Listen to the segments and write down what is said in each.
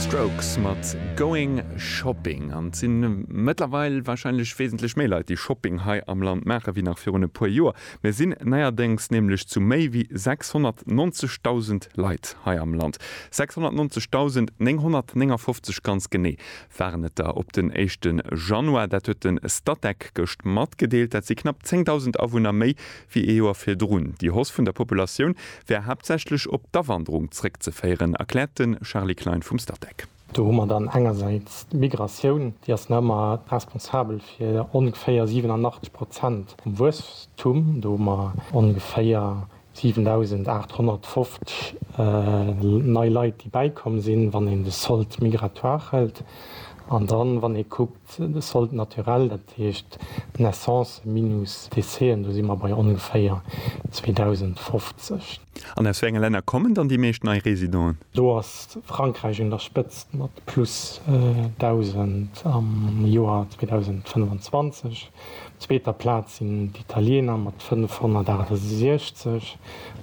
D'Strokes mat Going Shopping. An et si mëttlerweil warscheinlech wesentlech méi Leit, déi Shopping hei am Land maachen, wéi nach virun e puer Joer. Mir sinn neierdéngs nämlech zu méi wéi 690.000 Leit hei am Land. 690.959 ganz genee waren et der op den éischte Januar. Dat huet de Statec gëscht matgedeelt. Dat si knapp 10.000 Awunner méi wéi ee Joer virdrun. Déi Hausse vun der Populatioun wär haaptsächlech op d'Awanderung zréckzeféieren, erkläert de Charly Klein vum Statec. Do hu mer dann engersäits d'Migratioun, déi ass nach ëmmer responsabel fir ongeféier 87 Prozent vum Wuesstum. Do hu mer ongeféier 7.850 nei Leit, déi bäikomm sinn, wann een de Solde migratoire hëlt. An dann, wann ee kuckt, Soldes naturels, dat heescht Naissancen minus Decèsen, do si mer bei ongeféier 2.050. An aus wéi enge Länner kommen dann déi meescht nei Residenten? Do ass Frankräich un der Spëtzt mat plus 1.000 am Joer 2025. Op zweeter Plaz sinn d'Italiener mat 568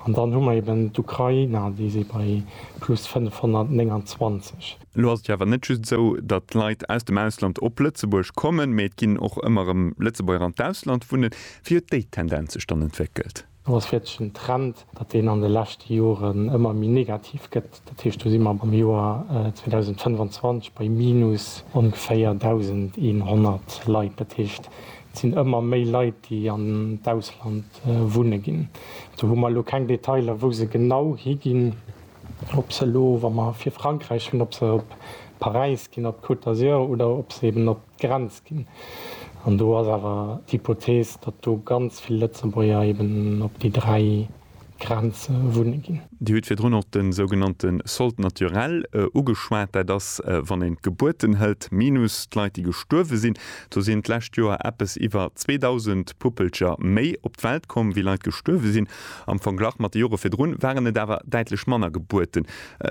an dann hu mer eben d'Ukrainer, déi si bei plus 529. Elo ass et jo awer net just esou, datt Leit aus dem Ausland op Lëtzebuerg kommen, mee et ginn och ëmmer erëm Lëtzebuerger an d'Ausland wunnen. Wéi huet déi Tendenz sech dann entwéckelt? Et ass wierklech en Trend, datt deen an de leschte Joren ëmmer méi negativ gëtt. Dat heescht, do si mer am Joer 2025 bei minus ongeféier 1.100 Leit. Dat heescht, et sinn ëmmer méi Leit, déi an d'Ausland wunne ginn. Do hu mer elo keng Detailer, wou se genau higinn. Ob se elo, wa mer fir Frankräich hunn, ob se op Paräis ginn, op d'Côte d'Azur oder ob se eben op d'Grenz ginn. An do ass awer d'Hypothees, datt do ganz vill Lëtzebuerger eben op déi dräi Grenze wunne ginn. Dir hutt virdrun och de sougenannte Solde naturel ugeschwat. Dat ass, wann een d'Gebuerten hëlt minus d'Leit, déi gestuerwe sinn. Do sinn d'lescht Joer eppes iwwer 2.000 Puppelcher méi op d'Welt komm, wéi Leit gestuerwe sinn. Am Verglach mat de Jore virdrun waren et awer däitlech manner Gebuerten.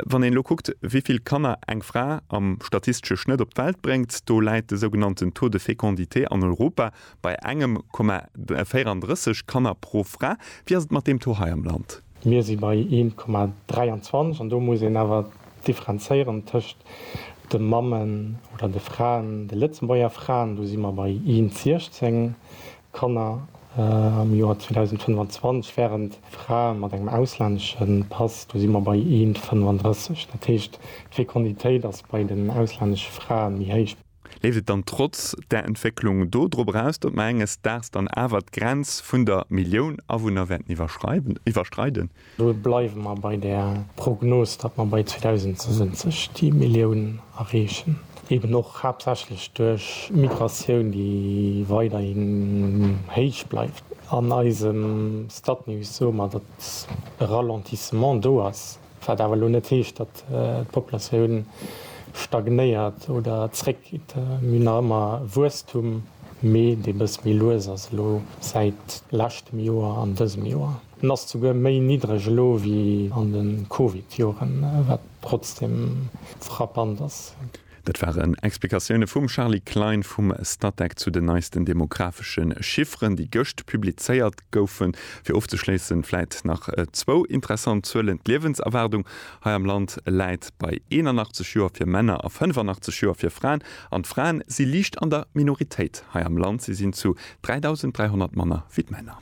Wann een elo kuckt, wéi vill Kanner eng Fra am statistesche Schnëtt op d'Welt bréngt, do läit de sougenannten Taux de fécondité an Europa bei engem Komma 34 Kanner pro Fra. Wéi ass et mat deem Taux hei am Land? Mir si bei een Komma 23 an do muss een awer differenzéieren tëscht de Mammen oder de Fraen, de Lëtzebuerger Fraen, do si mer bei een 16 Kanner am Joer 2025 wären Frae mat engem auslännesche Pass, do si mer bei een 35. Dat heescht, d'Fekonditéit ass bei den auslännesche Frae méi héich. Leeft et dann trotz där Entwécklung do drop eraus, datt mer enges Daags dann awer d'Grenz vun der Millioun Awunner wäerten iwwerschreiden? Do bleiwe mer bei där Prognos, datt mer bei 2070 déi Millioun erreechen, eben och haaptsächlech duerch Migratioun, déi weiderhi héich bleift. An eisem Statnews soe mer, datt e Ralentissement do ass, wat awer elo net heescht, datt d'Populatioun stagnéiert oder zréckgeet. Mir hunn nach ëmmer Wuesstum, mee dee bëss méi lues ass elo säit leschtem Joer an dësem Joer. En ass souguer méi niddreg elo wéi an de Covid-Joren, wat trotzdeem frappant ass. Dat waren Explikatioune vum Charly Klein vum Statec zu den neisten demografesche Chifferen, déi gëscht publizéiert goufen. Fir ofzeschléissen, vläit nach zwou interessant Zuelen, D'Liewenserwaardung hei am Land läit bei 81 Joer fir Männer a 85 Joer fir Fraen. An d'Fraen si liicht an der Minoritéit hei am Land, si sinn zu 3.300 manner wéi d'Männer.